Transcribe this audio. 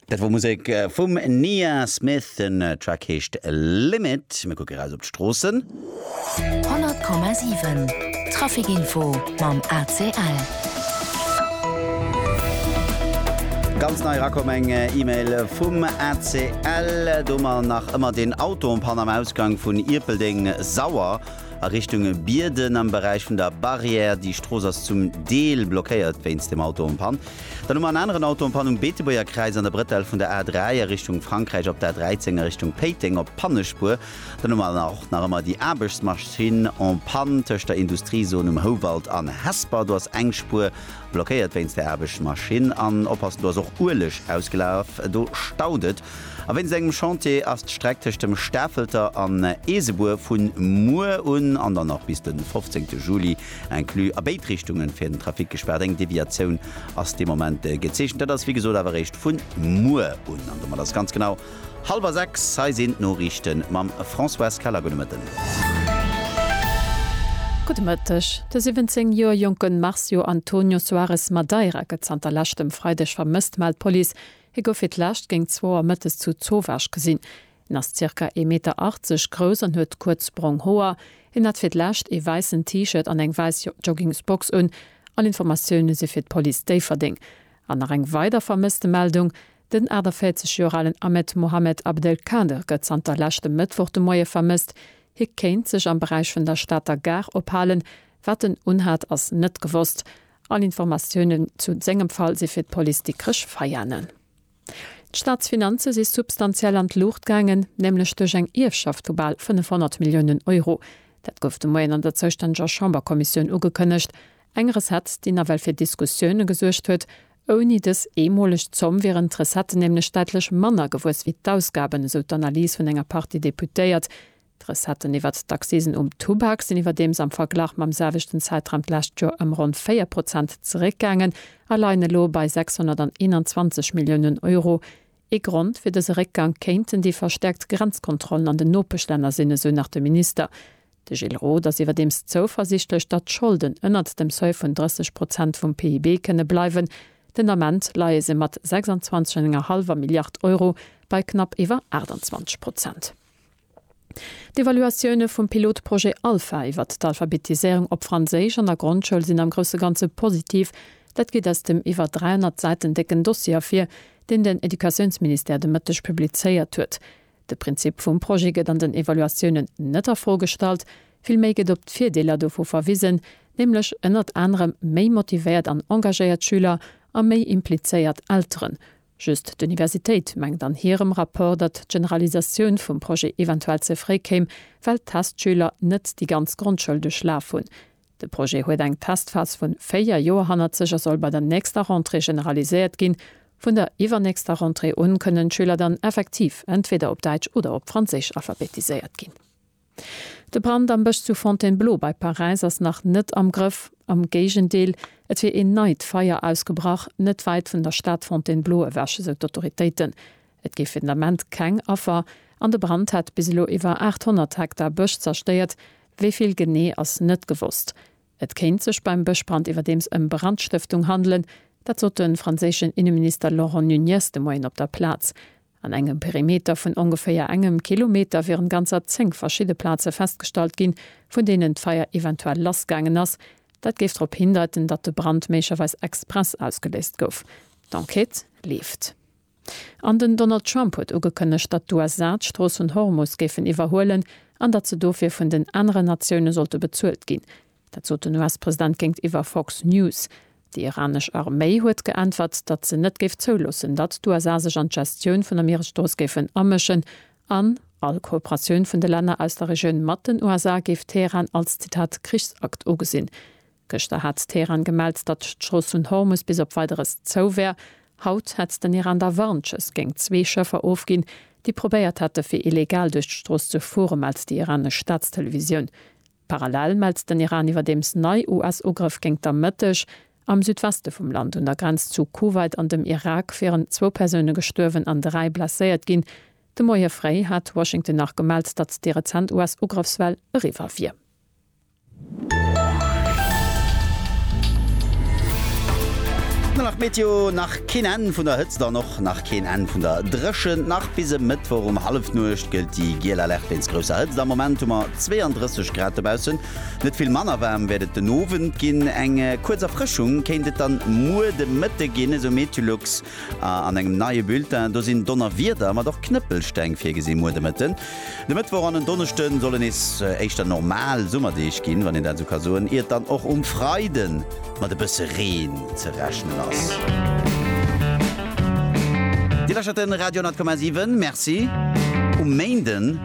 Dat wor Musek vum Nia Smith, den Track heescht Limit. Mir kucke raus op d'Stroossen. 100,7 Trafic Info mam ACL. Ganz nei erakomm, eng Email vum ACL, do mer nach ëmmer deen Auto um Panamausgang vun Ierpeldeng, Sauer. a Richtung Bierden am Beräich vun der Barrière. Déi Strooss ass zum Deel blockéiert wéinst dem Auto am Pann. Dann hu mer en aneren Auto am Pann um Beetebuerger Kräiz an der Bretelle vun der A3 a Richtung Frankräich op der A13 a Richtung Péiteng op Pannespuer. Dann hu mer och nach ëmmer déi Aarbechtsmaschinn en panne tëscht der Industriezon um Houwald an Hesper. Do ass eng Spuer blockéiert wéinst der Aarbechtsmaschinn. An oppassen, do ass och Ueleg ausgelaf, do staut et. A wéinst engem Chantier ass d'Streck tëscht dem Stafelter an Eesebuer vu muer un an dann och bis de 15 Juli inclus a béid Richtunge fir den Trafic gespaart. Eng Deviatioun ass dee Moment gezeechent. Dat ass wéi gesot awer eréischt vu muer un. An domat ass ganz genau hallwer sechs. Hei sinn d'Noriichte mam Françoise Keller. Gudde Mëtten. Gudde Mëtteg. De 17 Joer jonke Marcio Antonio Soares Madeira gëtt zanter leschtem Freideg vermësst, mellt d'Police. Hie gouf fir d'lescht géint zwou Auer mëttes zu Zowaasch gesinn. Hien ass zirka ee Meter 80 grouss an huet kuerz brong Hoer. Hien hat fir d'lescht ee wäissen T-Shirt an eng wäiss Joggingsbox un. All Informatioune si fir d'Police Déifferdeng. An nach eng weider Vermësstemeldung, Den 48 Joer alen Ahmed Mohamed Abdelkader gëtt zanter leschtem Mëttwoch de Moie vermësst. Hie kéint sech am Beräich vun der Stater Gare ophalen. Wat en unhat, ass net gewosst. All Informatiounen zu sengem Fall si fir d'Police Dikrech Veianen. D'Staatsfinanze si substantiell an d'Luucht gaangen, nämlech duerch eng Ierfschaft vu bal 500 Milliounen Euro. Dat gouf de Moien an der zoustänneger Chamberkommissioun ugekënnegt. Eng Recette, déi nawell fir Diskussioune gesuergt huet. Ouni dës eemoleg Zomm wieren d'Recetten nämlech däitlech manner gewuess wéi d'Ausgaben, esou d'Analys vun enger Partie Deputéiert. D'Recetten iwwert d'Accisen um Tubak sinn iwwerdeems am Verglach mam selwechten Zäitraum d'lescht Joer ëm ronn 4 Prozent zeréckgaangen a leien elo bei 621 Milliounen Euro. Ee Grond fir dëse Réckgang kéinten déi verstäerkt Grenzkontrollen an den Nopeschlänner sinn, esou nach de Minister. De Gilles Roth ass iwwerdeems zouversiichtlech, datt d'Scholden ënnert dem Seuil vun 30 Prozent vum PIB kënne bleiwen. Den Ament leie se mat 26 an enger hallwer Milliard Euro bei knapp iwwer 28 Prozent. D'Evaluatioune vum Pilotprojet Alpha iwwert d'Alphabetiséierung op Franséisch an der Grondschoul sinn am grousse Ganze positiv. Dat geet aus dem iwwer 300 Säiten décken Dossier ervir, deen den Educatiounsministère de Mëtteg publizéiert huet. De Prinzip vum Projet gëtt an den Evaluatiounen net a Fro gestallt, villméi gëtt op d'Virdeeler dovu verwisen, nämlech ënnert anerem méi motivéiert an engagéiert Schüler a méi implizéiert Elteren, Just d'Universitéit mengt an hirem Rapport, datt d'Generalisatioun vum Projet eventuell ze fréi kéim, well d'Testschüler net déi ganz Grondschoul duerchlaf hunn. De Projet huet eng Testphas vu véier Joer hannert sech a soll bei der nächster Rentrée generaliséiert ginn. Vun der iwwernächster Rentrée un kënnen d'Schüler dann effektiv entweder op Däitsch oder op Franséisch alphabetiséiert ginn. De Brand am Bësch zu Fontainebleau bei Paräis ass nach net am Grëff. Am Géigendeel, et wier een neit Feier ausgebrach, net wäit vun der Stad Fontainebleau ewech, esou d'Autoritéiten. Et géif fir den Ament keng Affer an de Brand hätt bis elo iwwer 800 Hektar Bësch zerstéiert. Wéi vill genee ass net gewosst. Et kéint sech beim Bëschbrand iwwerdeems ëm Brandstëftung handelen. Dat sot de franséischen Inneminister Laurent Nunez de Moien op der Plaz. An engem Perimeter vun ongeféier engem Kilometer wieren ganzer zéng verschidde Plaze festgestallt ginn, vun deenen d'Feier eventuell lass gaangen ass. Dat géif drop hindeiten, datt de Brand méiglecherweis express ausgeléist gouf. D'Enquête leeft. An den Donald Trump huet ugekënnegt, datt d'USA d'Strooss vun Hormus géifen iwwerhuelen an datt se dofir vun den aneren Natioune sollte bezuelt ginn. Dat sot den US-President géintiwwer Fox News. Déi iranesch Arméi huet geäntwert, datt se net géif zouloossen, datt d'USA sech an d'Gestioun vun der Mieresstrooss géifen amëschen an all Kooperatioun vun de Länner aus der Regioun mat den USA géif Teheran als, Zitat, Krichsakt ugesinn. Gëschter hat Teheran gemellt, datt d'Strooss vun Hormus bis op Weideres zou wär. Haut hätt den Iran da Warnschëss géingt zwee Schëffer ofginn, déi probéiert hätte fir illegal duerch d'Strooss ze fuere, mellt déi iranesch Staatstelevisioun. Parallel mellt den Iran iwwerdeems nei US-Ugrëff géingt am Mëtteg. Am Südweste vum Land, un der Grenz zu Kuwait an dem Irak, wieren zwou Persoune gestuerwen an dräi blesséiert ginn. De Moie fréi hat Washington nach gemellt, datt déi rezent US-Ugrëffswell eriwwer wier. Keen Enn vun der Hëtzt an och nach keen Enn vun der Dréchent. Nach bis e Mëttwoch um Hallefnuecht gëllt déi giel Alerte wéinst grousser Hëtzt. Am Moment hu mer 32 Grad dobaussen. Net vill manner waarm wäert et den Owend ginn. Eng kuerz Erfrëschung kéint et dann muer de Mëtte ginn, esou Meteolux an engem neie Bulletin. Do sinn Donnerwieder, mat och Knëppelsteng virgesi muer de Mëtten. De Mëttwoch an en Donneschde solle nees éischter normal Summerdeeg ginn, wann een dat esou ka soen, iert dann och um Freide mat e bësse Reen ze rechnen ass. Dir lauschtert de Radio 10,7. Merci um Méinden.